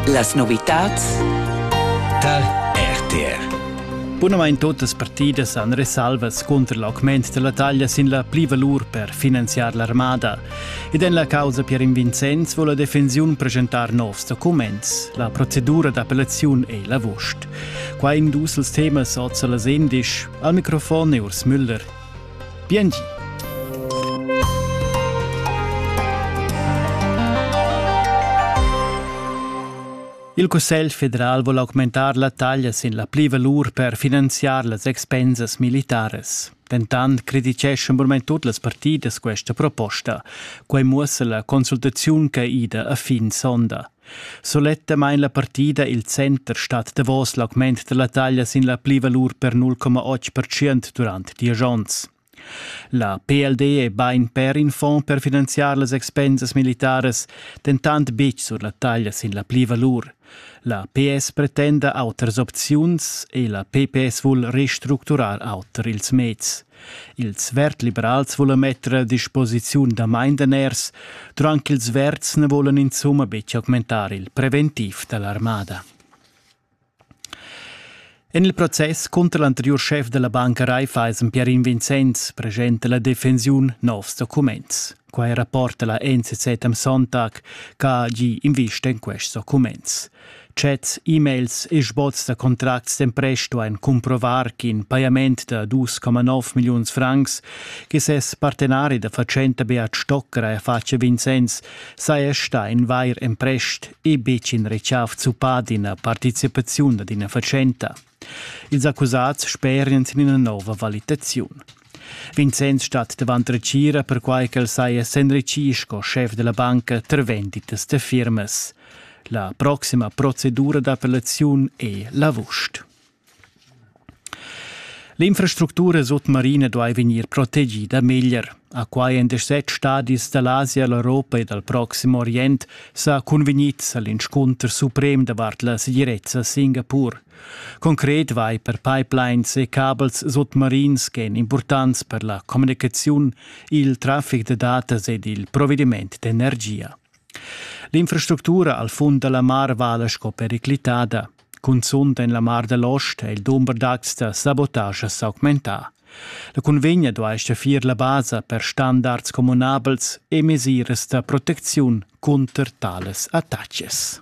Las novitads tar RTR. Bunamain totas partidas han resalvas cunter l'augment della taglia sin la plivalur per finanziar l'armada. Ed en la causa Pierin Vincenz vuole la defensiun presentar novs documents. La procedura d'appellaziun è l'avost. Qua in dus els temas oz las endisch. Al microfon è Urs Müller. Bien di! Il Cussegl federal vul augmentar la taglia sin la plivalur per finanziar las expensas militaras. Dentant crediteschan burmain tut las partidas questa proposta. Quai muossa la consultaziun che ida a fin sonda. Sulettamain la partida il center stat davos l'augment da la taglia sin la plivalur per 0,8% durant diesch onns. La PLD è bain per in fond per finanziar las expensas militaras, dentant betg sur la taglia sin la plivalur. La PS pretenda autras opziuns e la PPS vul restructurar auter ils meds. Ils verd-liberals volan metter a disposiziun damain daners, durant ch'ils verds na volan insumma betg augmentar il preventiv da l'armada. En il process cunter l'anteriur schef da la banca Raiffeisen Pierin Vincenz presenta la defensiun novs documents. Quai rapporta la NCZ am Sonntag, che ha gì invista en quests documents. Chats, e-mails e sboz da contracts d'empresto ein cumprovar ch'in pajament da 2,9 milliuns francs che ses partenari da fatschenta Beat Stocker ha fatg a Vincenz saja sta in vair emprest e betg in rechav zuppà d'ina participaziun ad ina fatschenta. Ils accusats sperian sin ina nova valitaziun. Vincenz stat davant retgira perquai ch'el saja s'enritgì sco schef da la banca tar venditas da firmas. La proxima procedura d'appellaziun è l'avust. L'infrastructura sutmarina duai vegnir protegida meglier. A quai èn set stadis da l'Asia, l'Europa e dal Proxim Orient sa cunvegnids a l'inscunter suprem davart la segirezza a Singapur. Concret vai per pipelines e cabels sotmarins ch'èn impurtants per la communicaziun, il traffic da datas ed il provediment d'energia. L'infrastructura al fund da la mar vala sco periclitada. Cunzunt en la Mar da l'Ost è il dumber d'acts da sabotascha s'augmentà. La cunvegna duai staffir la basa per standards communabels e mesiras da protecziun cunter tales attacks.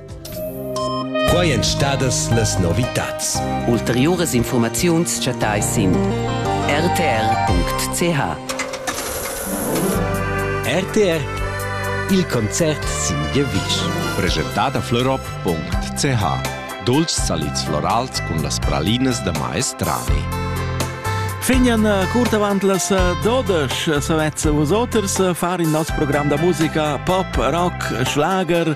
Quai èn stadas las novitads. Ulteriuras infurmaziuns chattais sin rtr.ch. RTR Il concert sin giavisch. Preschentà da florop.ch Dolci salids florals cun las pralinas da maestrani. Fignan eh, curt avant las eh, dodesch eh, savets vosoters far il nostro program da musica pop, rock, schlager